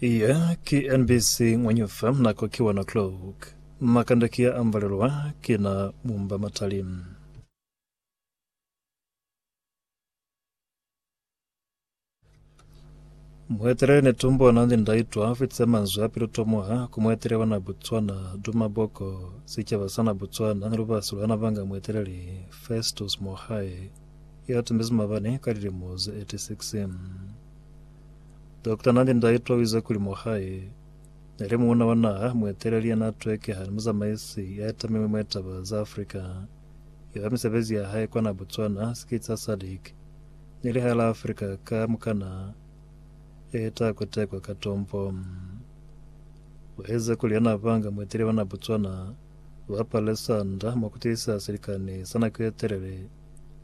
Iye ki NBC Ng'wenyufa nako ki 1 o'clock. Makande ki ya ambalelwa ki na mumba matali. Mueteleli Netumbo Nandi Ndaitwa fitse manzwi a pilu tomoha ku mueteleli wa na Botswana Duma Boko, sicaba sa na Botswana ni lubasi lwa na banga mueteleli Festus Mogae ya tumbezi mabani ka lilimo ze 86. Dokta na ni ndaitwa u ize kuli mohae ne li muuna wa naha, mueteleli ya n'a twekeha ni muzamaisi ya etamilwe mwa litaba za Afrika. Yola misebezi ya hae kwa na Botswana, sikiti sa SADC ni lihae la Afrika ka mukana e ta kutekwa ka tompo. U ize kuli ya n'a banga mueteleli wa na Botswana wa palesa nda mwa ku tiisa silikani sa nako ye telele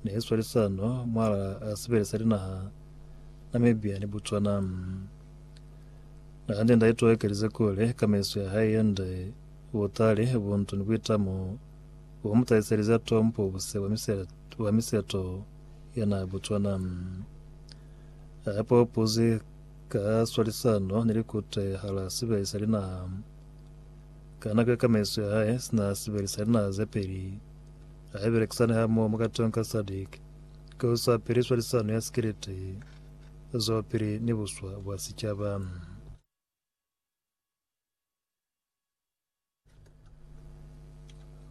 ne i swalisano mwalaa sibele sa linaha Namibia ni Botswana. Na hande nda itoekelize kuli ka meso ya hae yande, butali, buntu ni buitamo bu mu tahiselize a tompobuse bwa miseto ya naha Botswana. A popozi ka swalisano ni likute hala sibele sa linaha. Ka nako ye ka meso ya hae sina sibele sa linaha ze peli, Hai belekisani hamoho mwa katong ka SADC ki ho sa piliswa lisano ya sikiliti zwapili ni buswa bwa sicaba.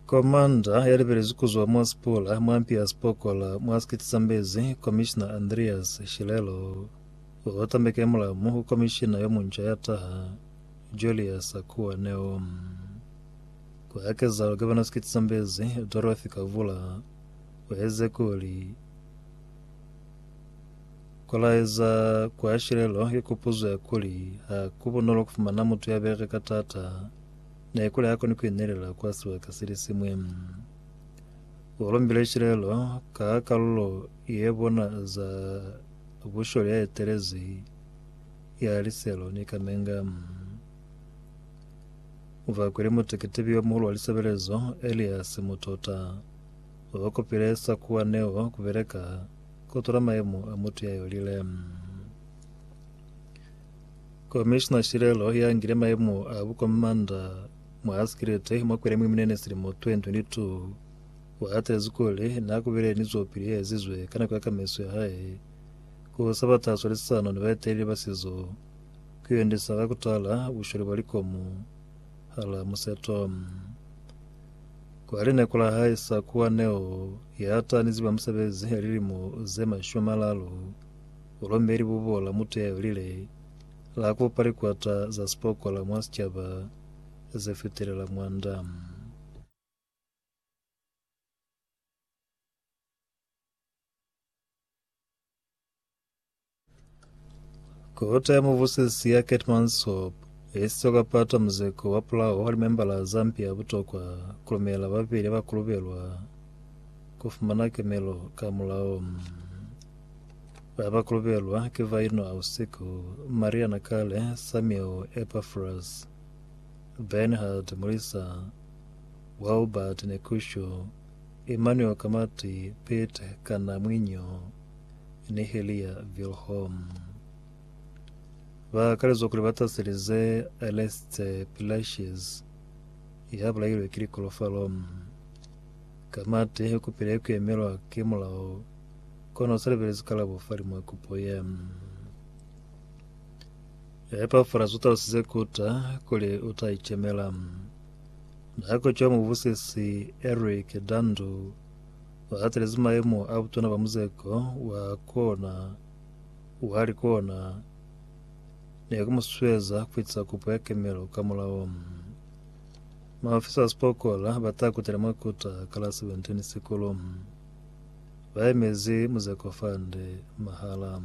Komanda ya libelezwi ku zwa mwa Sipula mwa mpi ya Sipokola mwa sikiliti sa Mbezi, Komishina Andreas Shilelo, u tambeke mulamu ku komishina yo munca ya taha, Julius Akuwa Neo. Ku ya ka zeo, Gavana Skit Zambezi, Dorothy Kavula, u eze kuli ku laeza kwa shilelo ye kupuzo ya kuli ha ku bunolo ku fumana mutu ya bereka taata ne kuli ha koni ku inelela kwa sibaka se li siñwi. U lumbile shilelo ka kalulo ye bona za busholi ya etelezi ya liselo ni kamenga. Bakwile muteketibi yomuhulu wa lisebelezo, Elias Mutota, babakopile sakuwa neo kubeleka kutula mayemo a mutu yayolile. Komishina Shilelo yangile mayemo a bukomanda mwa asikilite mwa kwele mwiminene silimo 2022 waatezi kuli nakubile ni zwopili yaezizwe ka nako ya kamiso yahae kusaba taso lisisano ni baeteleli ba sizo ku yondisa ka ku tala bushwele bwa likomu hala museto. Kwa lineko la hae sa kuwa Neo ya ta ni ziba musebezi ya lilimo ze mashumi a malalu, u lombe libubo la mutu ya yolile la ku pa likwata za sipokola mwa sicaba ze fitelela mwanda. Kota ya muvusisi ya Kate Mansop yesizwe kwa pata muzeko wa pulaho wa limembala za mpi ya butokwa kulumela babeli abakulubelwa kufumana kemelo ka mulao. Babakulubelwa ki Vaino Ausiku, Maria Nakale, Samuel Epaphras, Bernhard Mulisa, Wilbert Nekusho, Emmanuel Kamati Piet kana mwiño Niheliya Vilhom. Ba kalezwa kuli ba taselize Aleste Pilashes ya bulailwe ki likolofalom. Kamati i kupile ku emelwa ki mulao kono u sa lebelezi kalabo fa limwa kupo ye. Epafras u talusize kuta kuli u ta icemela. Mih'a koco ya mubusisi Eric Dandu wa hatelezi mayemo a butuna ba muzeko wa kona wa likona ne ku mu susueza ku fitisa kopo ya kemelo ka mulao. Maofisa ba sipokola ba ta kutela mwa kota ka la 17 Sikulu. Ba emezi Muzeko Fund mahala.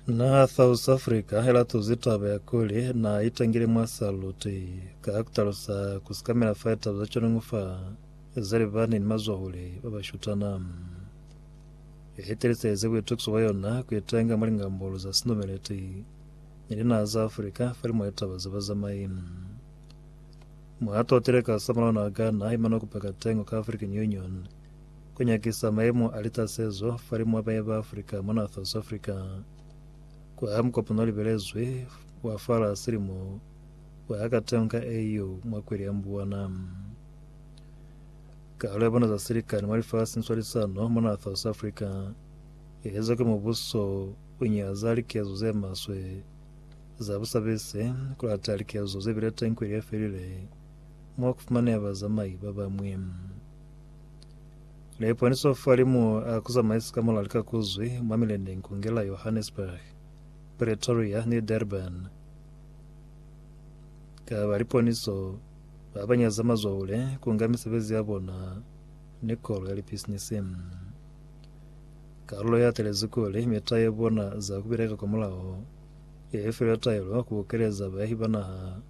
Na South Africa ilatuzi taba ya kuli na itangile mwa saluti ka kutalusa kusikamela fa litaba za conongo fa zalibani ni mazwahule ba bashutana. Itelisaize kuitukiso kwa yona kuitenga mwa lingambolo za sinumeleti ni linaha za Afrika fa limo ya taba za bazamai. Mwa totile ka samulaho na Ghana imana kupeka tengo ka African Union Ku nyakisa mayemo a litasezo falimw'a bañi ba Afrika mona South Afrika. Ku aha mukopano o libelezwi wa fala silimo wa ha kateho ka AU mwa kweli ya Mbuwana. Kalo ya bona za silikani mwa lifasi ni swalisano mona South Afrika i ezwa ki mubuso u nyaza likezo ze maswe za busabise, ku lata likezo ze bile teñi kweli ye felile mwa ku fumaneha bazamai ba bañwi. Ne iponiswa fa limu a ku zamaisa ka mulali ka ku zwi mwa mileneñi ku ngela Johannesburg, Pretoria ni Durban. Ka ba liponiso, ba ba nyaza mazwahule ku nga misebezi ya bona ni kolo ya lipisinisi. Kalulo ya telezi kuli mita ya bona za ku bileka kwa mulaho ye i filwe taelo ku bokeleza bayahi ba naha,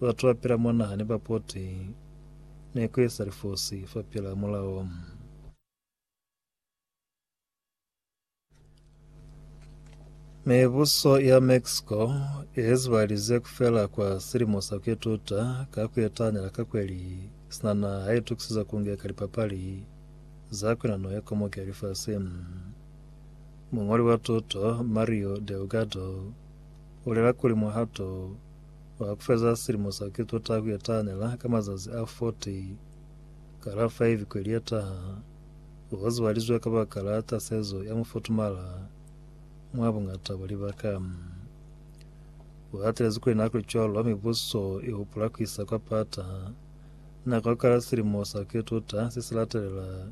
batu ba pila mwa naha ni bapoti. ne ku eza lifosi fapil'a mulao. Mibuso ya Mexico ye zibalize kufela kwa silimo sa ku ituta ka ku etahanela ka kweli sina naha ha itukisiza ku ngeka lipapali za kwinano ya komoke ya lifasi. Muñoli wa tuto Mario Delgado ulela kuli muhato Mwa kufeza silimo sa Kristo ta ku yatanela ka mazazi a 40, ka la 5 kweli ye taha, u ka zwalizwa kabakala tasezo ya mufutumala mwa buñata bwa libaka. U hatelezi kuli na kuli cwalo ha mibuso i hupula ku isa kwa pata, na ka kala silimo sa Kristo ta si si latelela.